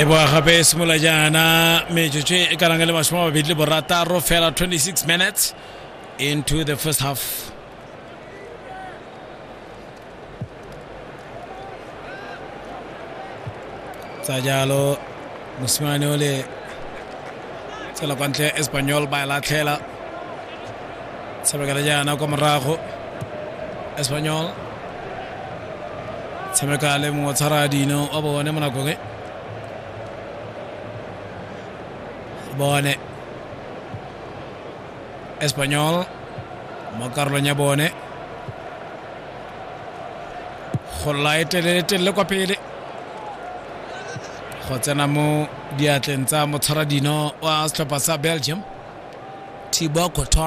e boa gape e simolola jaana metsotso e ka lang e le masome a mabedi le borataro fela 26 minutes into the first half tsa jalo mosimane o le tsela kwa ntle espanyol ba e latlhela tshamekela jaana kwa morago espanyol tshameka le mongwe tshwara dino wa bone mo nakong e bone espanyol mo karolong ya bone go lae telele-telele kwa pele go tsena mo diatleng tsa motshwara dino wa setlhopha sa belgium thibo kotho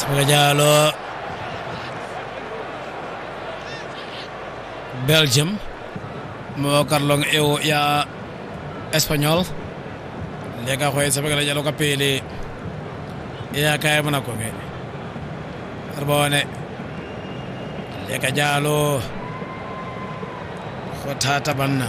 Samuel Diallo Belgium mo karlong eo ya Espanyol le ka go e tshamekela jalo ka pele e ya kae bonako bele re bone le ka jalo go thata banna